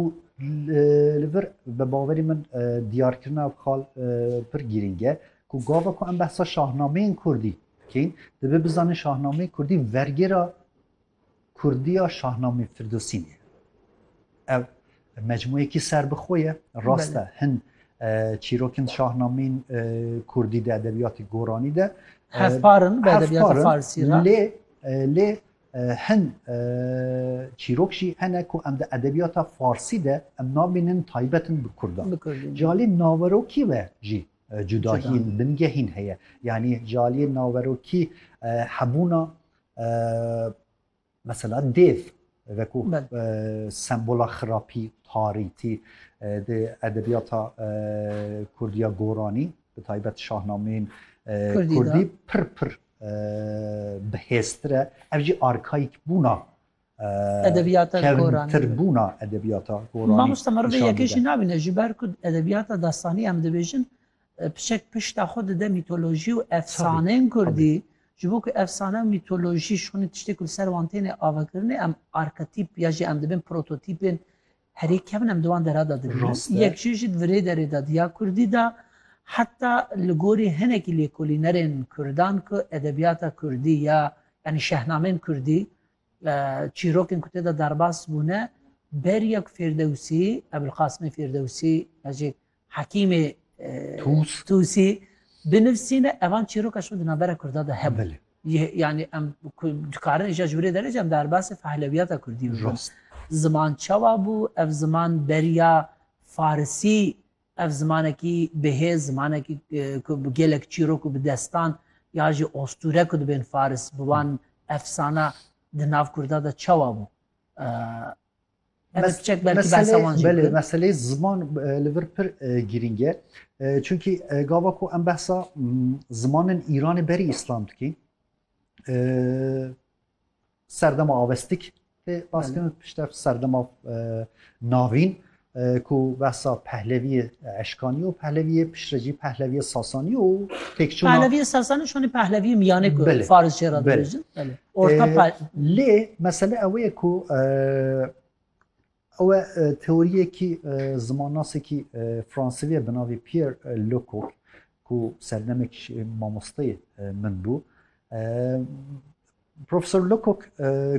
û li vir bi bawerî min diyarkirina ev xal pir girîng e ku gava ku em behsa şahnameyên kurdî kîn dibe bizanîn şahnameyê kurdî vergêra kurdiya şahnamê firdosîn ye ev mecmuyekî ser bi xwe ye rast e hin çîrokên şahnameyên kurdî de edebiyatê goranî de hevparin bi edebiyata farsî lê lê Hin çîrok jî hene ku em di edebiyata farsî de em nabînin taybet in bi kurdan. Ji aliyê naverokî ve jî cudahiyên bingehîn heye. Yanî ji aliyê naverokî hebûna mesela dêv veku sembola xirapî, tarîtî di edebiyata kurdî ya goranî bi taybet şahnameyên kurdî pir pir bi hêztir e ev jî arkayîk bûna edebiyata kevtir bûna edebiyata Goranî. Mamosta me rivê yekê jî nabîne ji ber ku edebiyata destanî em dibêjin pişek pişta xwe dide mîtolojî û efsaneyên Kurdî ji bo ku efsane û mîtolojî şonî tiştê ku li ser wan têne avakirinê em arketîp ya jî em dibin prototîpên Herî kevn em di wan dera de dibînin. Rast e. Yek jî ji virê derê de di ya kurdî de heta li gorî hinekî lêkolînerên kurdan ku edebiyata kurdî ya yanî şehnameyên kurdî çîrokên ku tê de derbas bûne beriya ku Fêrdewsî, Ebûlqasimê Fêrdewsî, ez jî Hekîmê Tûsî binivîsîne evan çîroka şû di navbera Kurda de hebû. Yani em dikarin îja ji wîrê derê cem derbasê fehlewiyata Kurdî bibin. Ziman çawa bû, ev ziman beriya Farisî ev zimanekî bihêz zimanekî ku bi gelek çîrok û bi destan ya jî ostûre ku dibên Faris bi wan efsana di nav Kurda de çawa bû. Belê meselê ziman li vir pir girîng e. Çunkî gava ku em behsa zimanên Îranê berî îslam dikîn serdema avestik tê baskirin pişt ev serdema navîn ku behsa pehleviyê eşkanî û pehleviyê piştre jî pehleviyê sasanî û têkçûna Pehleviyê sasanî şonî pehleviyê miyanê ku faris jê re dibêjin. Orta pay. Lê mesele ew ye ku ew teoriyekî zimannasekî Fransivî ye bi navê Pierre Lecoq ku serdemekî jî mamosteyê min bû. Profesor Lecoq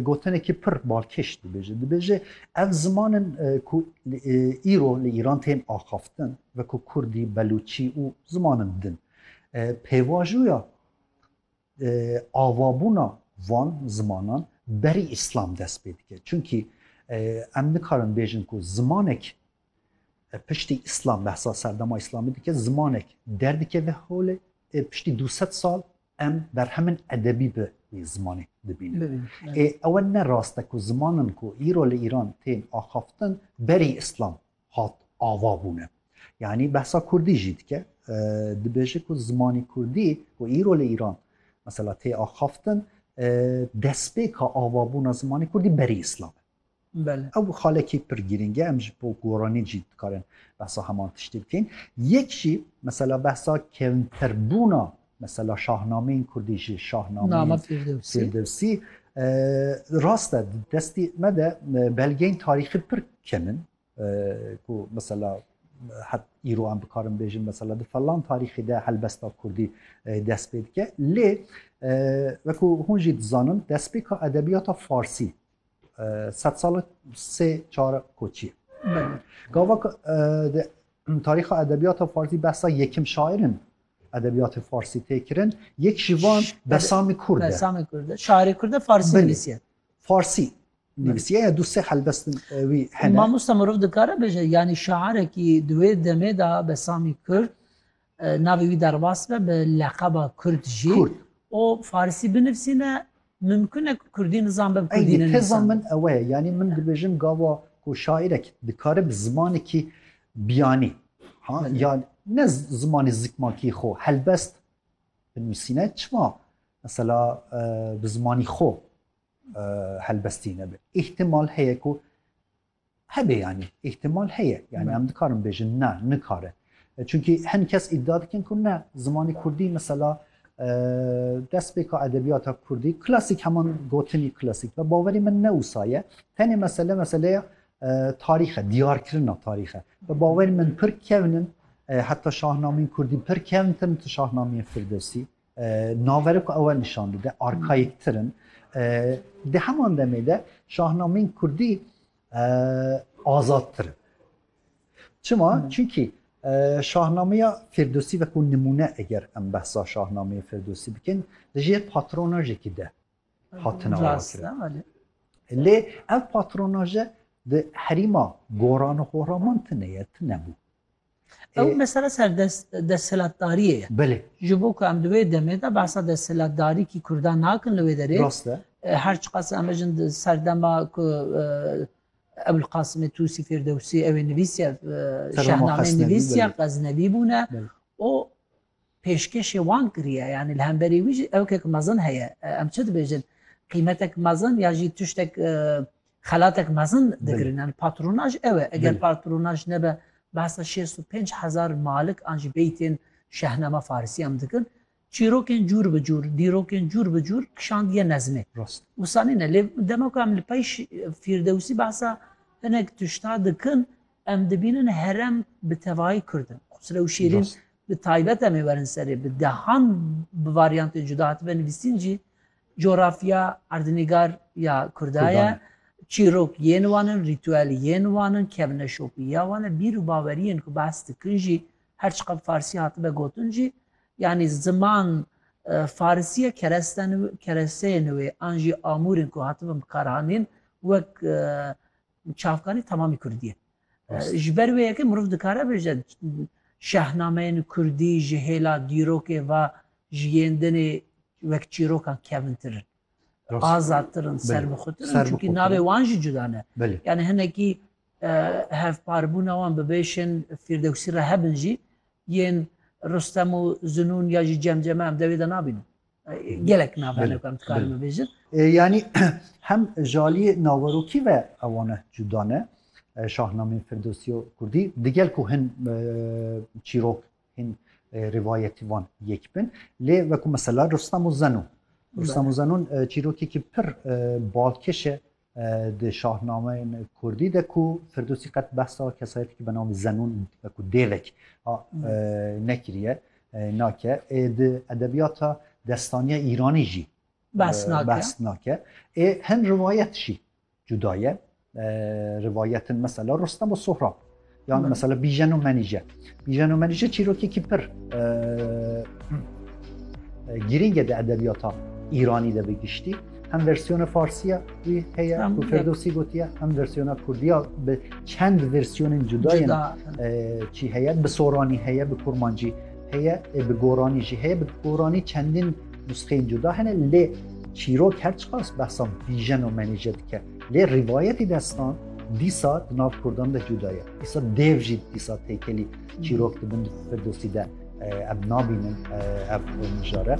gotinekî pir balkêş dibêje. Dibêje ev zimanin ku îro li Îran tên axaftin ve ku Kurdî, Belûçî û zimanin din. Pêvajoya Avabûna van zimanan berî îslam dest pê dike. Çimkî em nikarin bêjin ku zimanek piştî îslam behsa serdema îslamî dike, zimanek derdikeve holê ê piştî du sed sal em berhemin edebî bi wî zimanê dibînin. Ê ew ne rast e ku zimanin ku îro li Îran tên axaftin berî îslam hat ava bûne. Yanî behsa kurdî jî dike. Dibêje ku zimanê kurdî ku îro li Îran mesela tê axaftin destpêka avabûna zimanê kurdî berî îslam e. Belê. Ew xalekî pir girîng e. Em ji bo goranî jî dikarin behsa heman tiştê bikin. Yek jî mesela behsa kevnterbûna Mesela şahnameyên kurdî jî şahnameyên Fêrdewsî rast e di destî me de belgeyên tarîxî pir kem in ku mesela het îro em bikarin bêjin mesela di falan tarîxî de helbesta kurdî dest pê dike lê wekû hûn jî dizanin destpêka edebiyata farsî Sed sal sê çar koçî. Gava di tarîxa edebiyata farsî behsa yekim şair in edebiyatê farsî tê kirin. Yek ji van Besamî Kurd e. Besamî Kurd e. Şairê Kurd e farsî nivîsiye. Farsî nivîsiye ya du sê helbestin wî hene. Mamosta mirov dikare bêje yanî şairekî di wê demê de Besamî Kurd Navê wî derbas be bi leqeba Kurd jî Kurd. û Farsî binivîsîne, mimkun e ku Kurdî nizan be bi Kurdî Eynî teza nenivîsan. min ewe ye. Yanî min dibêjim gava ku şaîrek dikare bi zimanekî biyanî ha Belê. ya ne zimanê zikmakî xwe helbest binivîsîne çima mesela bi zimanî xwe helbestî nebe. Îhtimal heye ku Hebe yanî, îhtimal heye. Yanî em dikarin bêjin ne, nikare. Çunkî hin kes îdia dikin ku ne, zimanê kurdî mesela destpêka edebiyata kurdî klasîk heman gotinî klasîk be. Bawerî min ne wisa ye. Tenê mesele meseleya tarîx e, diyarkirina tarîx e. Bi bawerî min pir kevn in heta şahnameyên kurdî pir kevn tin tu şahnameyên Firdewsî. Navere ku ew nîşan dide arkayîktir in. Di heman demê de şahnameyên kurdî azadtir in. Çima? Çimkî şahnameya Firdosî ve ku nimûne eger em behsa şahnameya Firdosî bikin di jê patronajekî de hatina wakirin. Lê ev patronaje di herîma goran û horaman tine ye, tine bû. Ew mesele ser desthilatdariyê ye. Belê. Ji bo ku em di wê demê de behsa desthilatdarîkî Kurdan nakin li wê derê. Rast e. Her çiqas em bijin di serdema ku Ebul Qasimê Tûsî Fêrdewsî ew ê nivîsiye şehnameyê nivîsiye Xeznevî bûne û pêşkêşê wan kiriye yanî li hemberî wî jî ewkek mezin heye em çi dibêjin qîmetek mezin ya jî tiştek xelatek mezin digirin yanî patronaj ew e eger patronaj nebe behsa şêst û pênc hezar malik an jî bêyî tên şehnama farisî em dikin çîrokên cûr bi cûr dîrokên cûr bi cûr kişandiye nezmê wisa nîne lê dema ku em li pey fîrdewsî behsa hinek tişta dikin Em dibînin herem bi tevayî Kurd in. Xusrew û Şêrîn bi taybet em ê werin serê. Bi dehan bi varyantên cuda hatibe nivîsîn jî cografya erdnîgar ya Kurda ye, çîrok yên wan in, rîtûel yên wan in, kevneşopî ya wan e, bîr û baweriyên ku behs dikin jî her çiqad farsî hatibe gotin jî yanî ziman farisî ye, keresteyên wê an jî amûrên ku hatibin bikaranîn wek Çavkanî temamî kurdî ye. Ji ber wê yekê mirov dikare bêje şehnameyên kurdî ji hêla dîrokê ve ji yên dinê wek çîrokan kevintir in. Azadtir in, serbixwetir in çunkî navê wan jî cuda ne. Yanî hinekî hevparbûna wan bi bêşên Fîrdewsî re hebin jî yên Rustem û Zinûn ya jî Cemceme em dewê de nabînin. Gelek navbera ne karim dikarim bibêjin. Yanî hem ji aliyê naverokî ve ewane cuda ne. Şahnameyên Firdosî û Kurdî digel ku hin çîrok hîn rivayetî wan yek bin lê wekû mesela Rustem û Zenûn. Rustem û Zenûn çîrokekî pir balkêş e Di şahnameyên kurdî de ku Firdûsî qet behsa kesayetekî bi navê Zenûn û wekû dêvek a nekiriye nake ê di edebiyata destaniya îranî jî behs nake ê hin rivayet jî cuda ye rivayetin mesela Rostem û Sohrab. Yan mesela Bijeno Menije. Bijeno Menije çîrokekî pir girîng e di edebiyata Îranî de bi giştî. Hem versiyona Farsiya wî heye ku Ferdosî gotiye, hem versiyona Kurdiya bi çend versiyonên cudayên çî heye, bi soranî heye, bi kurmancî heye, bi goranî jî heye, bi goranî çendin nusxeyên cuda hene lê çîrok her çiqas behsa Bijeno Menije dike. Lê rivayetî destan dîsa di nav Kurdan de cuda ye. Dîsa dev jî dîsa têkelî çîrok dibin di Firdosî de ev nabînin ev mijare.